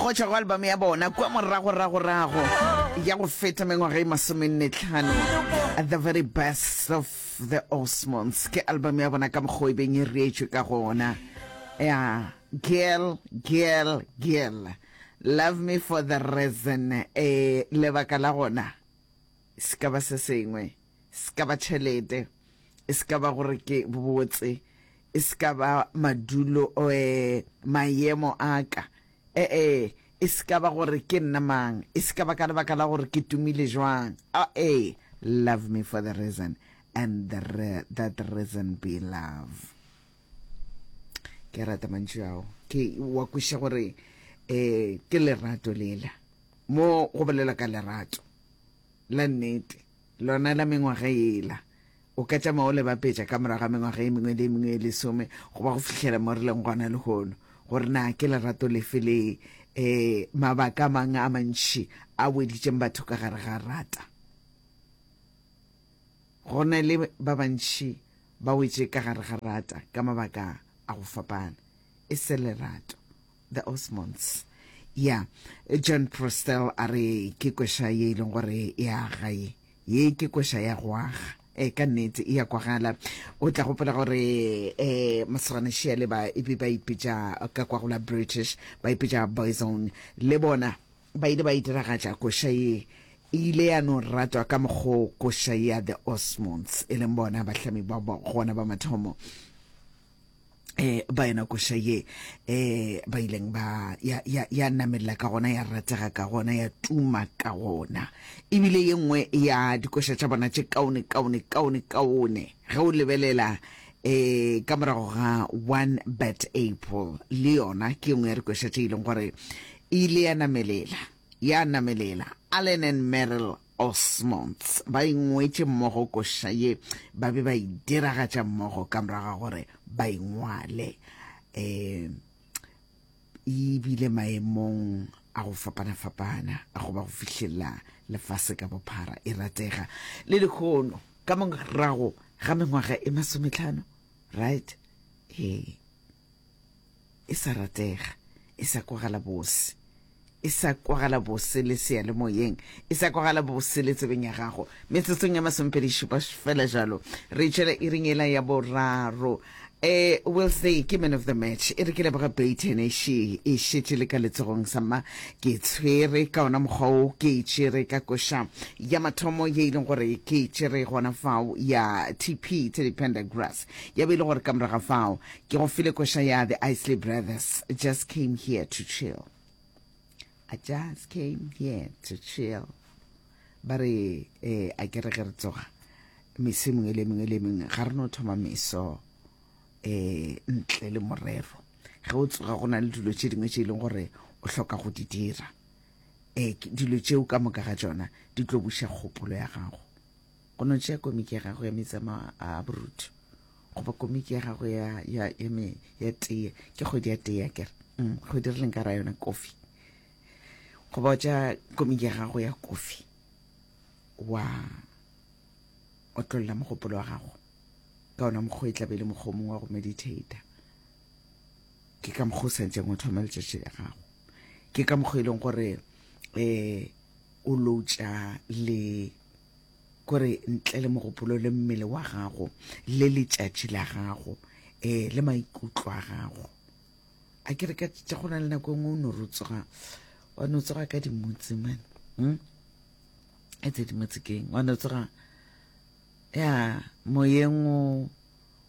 go tšwa go album ya bona kwa moragoragorago ya go feta mengwaga e masomennetlhano the very best of the osmonds ke album ya bona ka mokgwa e beng e reetswe ka gona ya girl girl girl love me for the reason e lebaka la gona se ka ba se sengwe e se ka ba tšhelete, e se ka ba gore ke botse, e se ka ba madulo or mayemo a ka, e-e, e se ka ba gore ke nna mang, e se ka ba ka lebaka la gore ke tumile jwang, a-e, love me for the reason and the re that reason be love. Ke a rata mantšu ao, ke wa kweša gore um ke lerato lela, mo go bolela ka lerato la nnete. lona la mengwaga yela. O ka tšama o le bapetša ka morago ga mengwaga e mengwe le e mengwe e lesome goba go fihlela mo re leng gona lehono gore na ke lerato lefe le um mabaka a mangwe a mantši a weditšeng batho ka gare ga rata go na le ba bantši ba wetše ka gare ga rata ka mabaka a go fapana e se lerato The Osmonds. Ya, John Prostel a re ke kweša ye e leng gore e aga ye. Ye ke kweša ya go aga. E ka nnete e ya kwagala. O tla gopola gore e masogana šea le ba e be ba ipetša ka kwa go la British, ba ipetša Boyzone. Le bona ba ile ba e diragatša kweša ye. E ile ya no ratwa ka mokgo kweša ya The Osmonds e leng bona bahlami ba gona ba mathomo. eh ba yena koša ye eh ba ileng ba ya ya ya namelela ka gona ya ratega ka gona ya tuma ka gona ebile ye nngwe ya dikoša tša bona tše kaone kaone kaone kaone ge o lebelela eh ka morago ga one bat april le yona ke ye nngwe ya dikoša tše e leng gore e ile ya namelela ya namelela allen and merrill Osmonds ba ingwetše mmogo koša ye ba be ba e diragatša mmogo ka morago ga gore ba ingwale. E bile maemong a go fapana-fapana a go ba go fihlelela lefase ka bophara e ratega le lehono ka morago ga mengwaga e masometlhano right ee e sa ratega, e sa kwagala bose, e sa kwagala bose le seyalemoyeng, e sa kwagala bose le tsebeng ya gago. Metsotsong ya masomepedi šupa fela jalo, re tšwela iring ela ya boraro. E will say ke man of the match e re ke leboga Bayton ši e šetše le ka letsogong sa mma ke tshwere ka ona mokgwa o ke e tšere ka koša ya mathomo ye e leng gore ke e tšere gona fao ya tp tse di pendergrass ya be e le gore ka moraga fao Ke go file koša ya The Isley Brothers, Just Came Here to Chill. I just came here to chill. Ba re, eh, a ke re ge re tsoga, meso e mengwe le mengwe le mengwe, ga re no thoma meso eh, ntle le morero. Ge o tsoga go na le dilo tše dingwe tše e leng gore o hloka go di dira. Eh, dilo tšeo ka moka ga tšona di tlo buša kgopolo ya gago. Go no tšea komiki ya gago ya metsamao a borutu goba komiki ya gago ya, ya, ya, me, ya teye ke kgwedi ya teye kere mm, go dirileng ka ra yona kofi goba tša komiki ya gago ya kofi wa otlolola mogopolo wa gago ka ona mokgwa e tlabe e le mokgwa mongwe wa go meditator ke ka mokgwa o santseng o thoma letšatši la gago ke ka mokgwa e leng gore um o loutša le Gore ntle le mogopolo le mmele wa gago le letšatši la gago um le maikutlo a gago a ke re ka tša go na le nako engwe o no re o tsoga wa no tsoga ka dimotse mane um e tse dimotse keng wa no tsoga ya moyeng o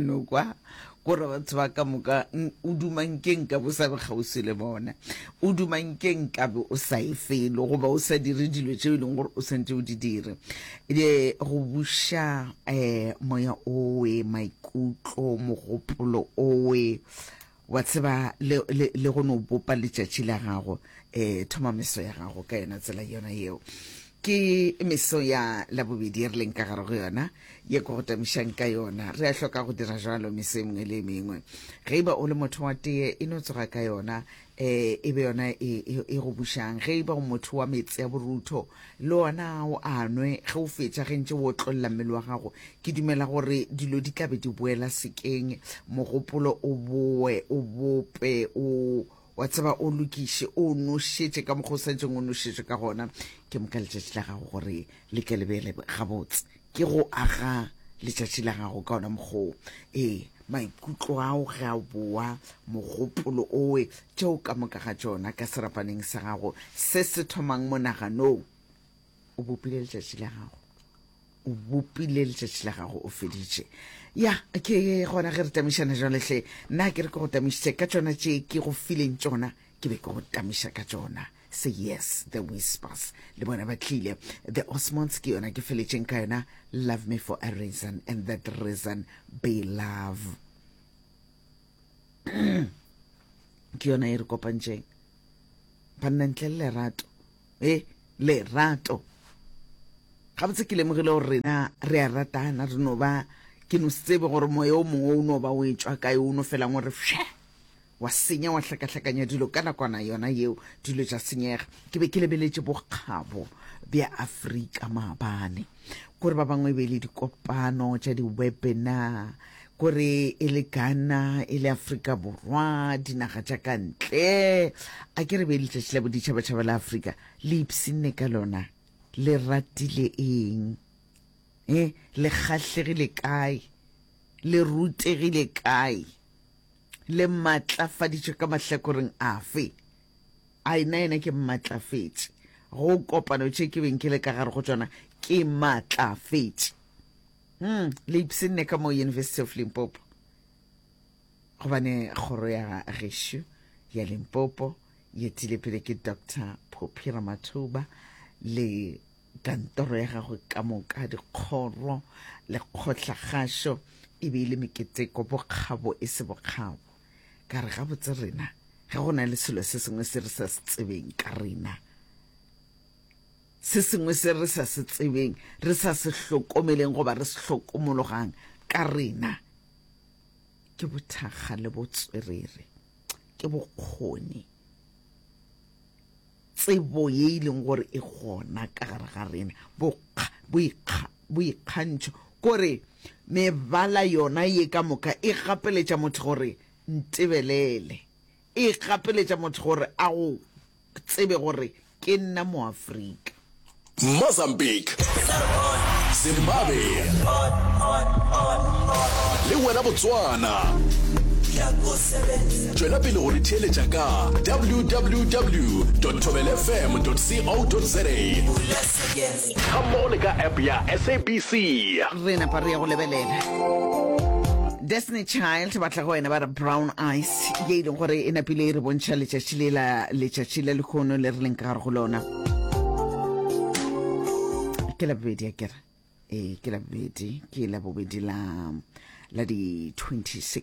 no kwa gore batho ba ka moka o dumankeng ka bo sa be kgauswi le bona o dumankeng ka be o sa e felo goba o sa dire dilo tšeo e leng gore o sentse o di dire e go buša um moya owe maikutlo mogopolo owe Wa tseba, le, le, le go no bopa letšatši la gago, e, thoma meso ya gago ka yona tsela yona yeo. Ke meso ya Labobedi e re leng ka gare go yona, ye ko go tamišang ka yona. Re a hloka go dira jalo meso e mengwe le e mengwe. Ge e ba o le motho wa teye, e no tsoga ka yona, e, e be yona e, e, e go bušang. Ge e ba o motho wa meetse a borutho, Le wona o a nwe, ge o fetša ge ntše o otlolla mmele wa gago. Ke dumela gore dilo di tla be di boela sekeng, mogopolo o boe o bope, o, wa tseba, o lokiše, o nošetše ka mokgwa o sa jeng o nošetšwe ka gona. Ke moka letšatši la gago gore le tle le be le gabotse. ke go aga letšatši la gago ka ona mokgoo ee maikutlo ao ge a boa mogopolo owe tšeo ka moka ga tšona ka serapaneng sa gago se se thomang monaganong o bopile letšatši la gago o bopile letšatši la gago o feditše ya ke gona ge re tamišana jwalehle nna ke re ke go tamišitše ka tšona tše ke go fileng tšona ke be ke go tamiša ka tšona se yes the whispers le bona ba tlile the osmonds ke yona ke feletšeng ka yona love me for a reason and that reason be love ke yona e re kopantšeng banna ntle le lerato e lerato gabotse ke lemogile gore rena re a ratana re no ba ke no se tsebe gore moya o mongwe o no ba o e tswa kae o no felang gore fše wa senya wa hlakahlakanya dilo ka nakwana yona yeo dilo tša senyega ke be ke lebeletše bokgabo bja afrika maabane kore ba bangwe e be e le dikopano tša di-webinar kore e le ghana e le afrika borwa dinaga tša ka ntle a ke re be letšatši la boditšhabatšhaba la afrika le ipsinne ka lona le ratile eng e le kgahlegile kae le rutegile kae le mmatlafaditše ka mahlakoreng afe? A e nna yena ke mmatlafetše go kopano tše ke beng ke le ka gare go tšona? Ke matlafetše. Hmm, le ipsenne ka mo University of Limpopo gobane kgoro ya gešo ya Limpopo ye tile pele ke Dr. Poppy Ramathuba le Kantoro ya gagwe ka moka, dikgoro le kgohlagašo e be e le meketeko, bokgabo e se bokgabo. Ka re gabotse rena, ge go na le selo se sengwe se re sa se tsebeng ka rena, se sengwe se re sa se tsebeng, re sa se hlokomeleng goba re se hlokomologang ka rena, ke bothakga le botswerere, ke bokgoni. Tsebo ye e leng gore e gona ka gare ga rena, bokga, boikga, boikgantšho, kore mebala yona ye ka moka e gapeletša motho gore ntebelele, e gapeletša motho gore a go tsebe gore ke nna moAfrika. Mozambique, Zimbabwe le wena Botswana. Tšwela pele go re theeletša ka www.thobelfm.co.za ga mmogo le ka app ya SABC. re napa re ya go lebelela destiny child ba tla go wena ba re brown eyes ye e leng gore e napile e re bontšha letšatši le la letšatši la lekgono le re leng ka gare go lona ke la bobedi akere e ke la bobedi ke la bobedi la la di-26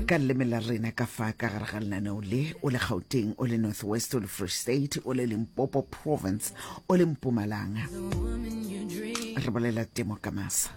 ka leleme la rena ka fa ka gare ga lenaneo le o le gauteng o le north west o le free state o le limpopo province o le mpumalanga re bolela temo ka masa